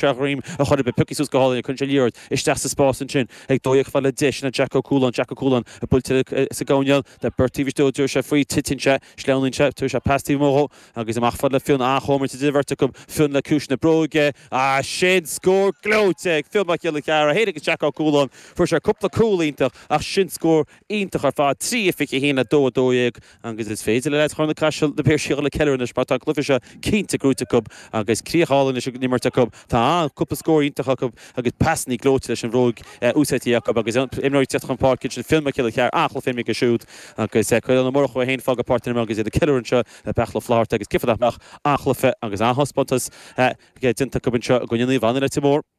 Sa ghreim a chuir Be pioctha suas go hálainn cuireann sé liathróid isteach sa spás ansin ag dóigh ag filleadh deiseanna Jack Ó Cualáin Jack Ó Cualáin buailte sa gcoinneal le beirt taobh istigh dtabharfaidh sé faoi titeann sé sleamhnaíonn sé tabharfaidh sé pas taobh amuigh dhó agus amach a fhad le Fionn an-chomhimirt idir an bheirt acu Fionn le ciumhais na bróige is sin scór gleoite ag Fionn Mac Giolla Cheara fhéin agus Jack Ó Cualáin fuair sé cúpla cúl iontach ach sin scór iontach ar fad 3 21 le 2 12 agus is féidir le lucht Charna Caiseal na Piarsaigh ceiliúradh anois mar tá an cluiche seo cinnte gnóite acu agus críoch álainn ar an imirt acu. Tá an, cúpla scór iontach acu agus pasanna gleoite leis an bhróg úsáidte acu agus imreoirí ag teacht chun páirce ansin, Fionn Mac Giolla Cheara an-chluiche aige siúd agus Caolán Ó Murchú é féin ag fágáil páirc an imeartha agus iad ag ceiliúradh anseo le Beartla Ó Flaithearta agus cén fáth nach mbeadh an-chluiche agus an-taispeántas déanta acu anseo i gcoinne Naomh Anna, Leitir Móir.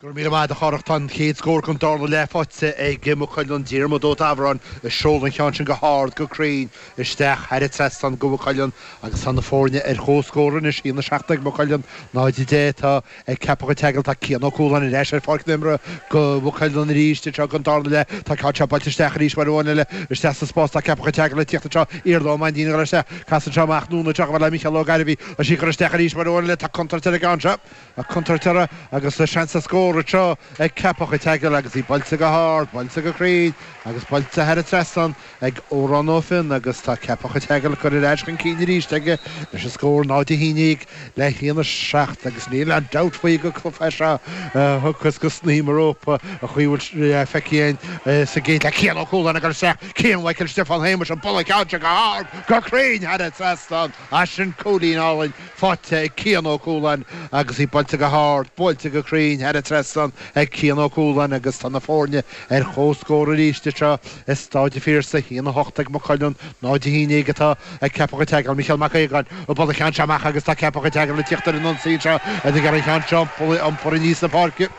Go raibh míle maith agat a Chárthaigh, tá an chéad scór den darna leath faighte ag Maigh Cuilinn. Diarmaid Ó Davoráin ag seoladh an cheann sin go hard, go cruinn isteach thar an trasnán do Mhaigh Cuilinn agus tá na foirne ar chomhscór anois, 1, 7 ag Maigh Cuilinn, 0, 10 atá ag Ceapach an tSeagail. Tá Cian Ó Cualáin ar ais ar pháirc na himeartha do Mhaigh Cuilinn arís anseo don darna leath. Tá an ceann seo buailte isteach arís uair amháin eile isteach sa spás. Tá Ceapach an tSeagail ag tíocht anseo Iarla Ó Mainnín a chur isteach. Casann sé amach anonn anseo le Micheál Ó Gairbhí. Tá sí curtha isteach arís uair amháin eile. Tá contúirt ar an gceann seo. a contúirt air agus tá seans ar scór anseo ag Ceapach a' tSeagail agus í buailte go hard, buailte go cruinn agus buailte thar a trasnán ag Odhrán Ó Finn agus tá Ceapach a' tSeagail curtha ar ais chun cinn arís aige leis an scór 0 a haon déag le haon a seacht agus níl aon dabht faoi go ngabhfaidh sé seo suas go snaidhm an rópa an chaoi a bhfuil sé feicthe againn sa gcéad leath, Cian Ó Cualáin ag cur isteach, Cian Mhichael Stiofán Shéamuis ag bualadh an cheann seo go hard, go cruinn thar a trasnán. Is sin cúilín álainn faighte ag Cian Ó Cualáin agus í buailte go hard, buailte go cruinn thar an trasnán ag Cian Ó Cualáin agus tá na foirne ar chomhscór arís anseo i Stáid an Phiarsaigh, haon a hocht ag Maigh Cuilinn, náid a haon déag atá ag Ceapach an tSeagail, Micheál Mac Aogáin ag bualadh an cheann seo amach agus tá Ceapach an tSeagail ag tíocht ar an ionsaí anseo ag iarraidh an ceann seo a iompar aníos na páirce,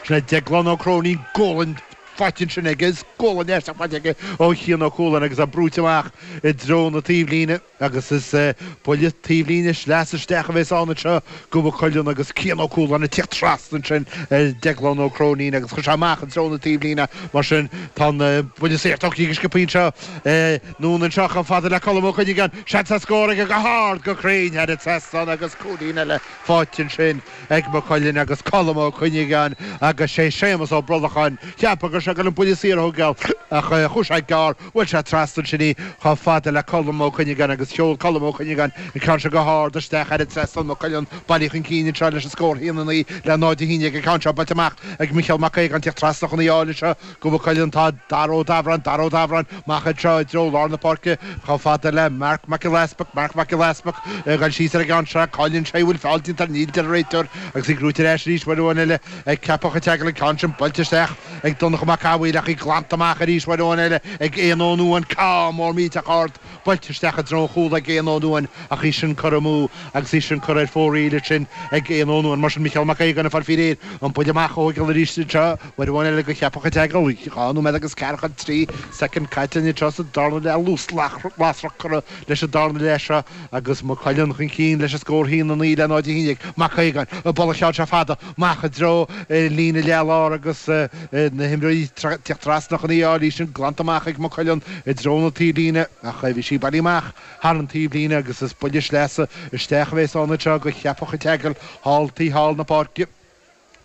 sin é Déaglán Ó Cróinín, Gualainn. faighte ansin agus gualainn aisteach faighte aige ó Chian Ó Cualáin agus é brúite amach i dtreo na taobhlíne, agus is buille taobhlíne sleasa isteach a bheas ann anseo, do Mhaigh Cuilinn, agus Cian Ó Cualáin ag tíocht trasna ansin ar Dhéaglán Ó Cróinín, agus chuir sé amach i dtreo na taobhlíne. Mar sin, tá an buille saor tógtha go sciobtha anseo anonn anseo chomh fada le Colm Ó Cuinneagáin. Seans ar scór aige go hard, go cruinn thar an trasnán, agus cúilín eile faighte ansin. Ag Maigh Cuilinn agus Colm Ó Cuinneagáin agus sé Séamus Ó Brolacháin cheapfá go raibh sé ag goil an buille saor a thógáil ach chuaigh sé gearr. Bhuail sé trasna ansin í chomh fada le Colm Ó Cuinneagáin agus sheol Colm Ó Cuinneagáin an ceann seo go hard isteach thar an trasnán. Maigh Cuilinn bailithe chun cinn anseo leis an scór haon a naoi le náid a haon déag an ceann seo buailte amach ag Micheál Mac Aogáin. Tíocht trasna chun í a fháil anseo go Maigh Cuilinn atá Dara Ó Dabhráin Dara Ó Dabhráin amach anseo i dtreo lár na páirce chomh fada le Marc Mac Giolla Easpaig Marc Mac Giolla Easpaig ag dul síos ar an gceann seo cailleann sé í bhfuil feall déanta Níl a deir an réiteoir agus í gnóthaithe ar ais arís uair amháin eile ag Ceapach an tSeagail an ceann sin buailte isteach ag Donnchadh Mac Cathmhaoil ach í glanta amach arís uair amháin eile ag Éanna Ó Nuain Ceann mór millteach ard buailte isteach i dtreo an chúil ag Éanna Ó Nuain ach í sin curtha amú agus í sin curtha ar fóraoil ansin ag Éanna Ó Nuain. Mar sin, Micheál Mac Aogáin ag fáil faoi réir an buille amach a thógáil arís anseo, uair amháin eile go Ceapach an tSeagail, dhá nóiméad agus ceathracha is trí soicind caite linn anseo sa darna leath, luas lasrach curtha leis an darna leath seo agus Maigh Cuilinn chun cinn leis an scór a haon a naoi le 0 a haon déag Mac Aogáin, ag bualadh an cheann seo fada. amach i dtreo líne leath lár agus na himreoirí ag teacht trasna chun í a fháil, í sin glanta amach ag Maigh Cuilinn i dtreo na taobhlíne ach bhí sí bailithe amach thar an taobhlíne agus is buille sleasa isteach a bheas ann anseo go Ceapach an tSeagail, thall taobh thall na páirce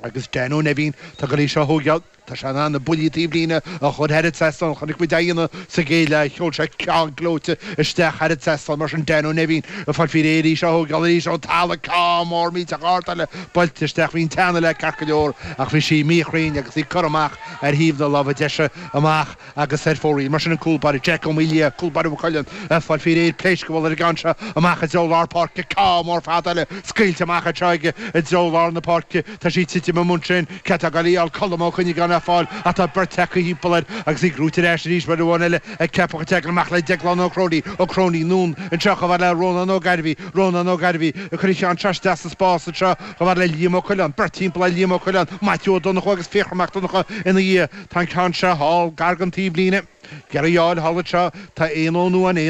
agus Dan Ó Neimhín atá ag goil í seo a thógáil. Tá sé in ann na buillí taobhlíne a chur thar an trasnán chonaic muid á dhéanamh sa gcéad leath sheol sé ceann gleoite isteach thar an trasnán mar sin Dan Ó Neimhín ag fáil faoi réir í seo a thógáil arís ón talamh ceann mór millteach ard eile buailte isteach bhí an teannadh léi ceart go leor ach bhí sí míchruinn agus í curtha amach ar thaobh na láimhe deise amach agus ar fóraoil mar sin an cúl báire Jack Ó Máille, cúl báire Mhaigh Cuilinn, ag fáil faoi réir pléasc a bhualadh ar an gceann seo amach i dtreo lár páirce. Ceann mór fada eile scaoilte amach anseo aige i dtreo lár na páirce. Tá sí ag titim ansin. Cé atá ag goil í a fháil Colm Ó Cuinneagáin á fáil ach tá beirt acu thimpeall air agus í gnóthaithe ar ais arís uair amháin eile ag Ceapach an tSeagail amach le Déaglán Ó Cróinín. Ó Cróinín anonn anseo chomh fhad le Rónán Ó Gairbhí. Rónán Ó Gairbhí ag cur an cheann seo isteach sa spás anseo chomh fhad le Liam Ó Coileáin. Beirt thimpeall ar Liam Ó Coileáin. Maitiú Ó Donnchú agus Fiachra Mac Donncha ina dhiaidh. Tá an ceann seo thall, gar don taobhlíne. Ag iarraidh í a fháil thall anseo, tá Éanna Ó Nuain, Éanna.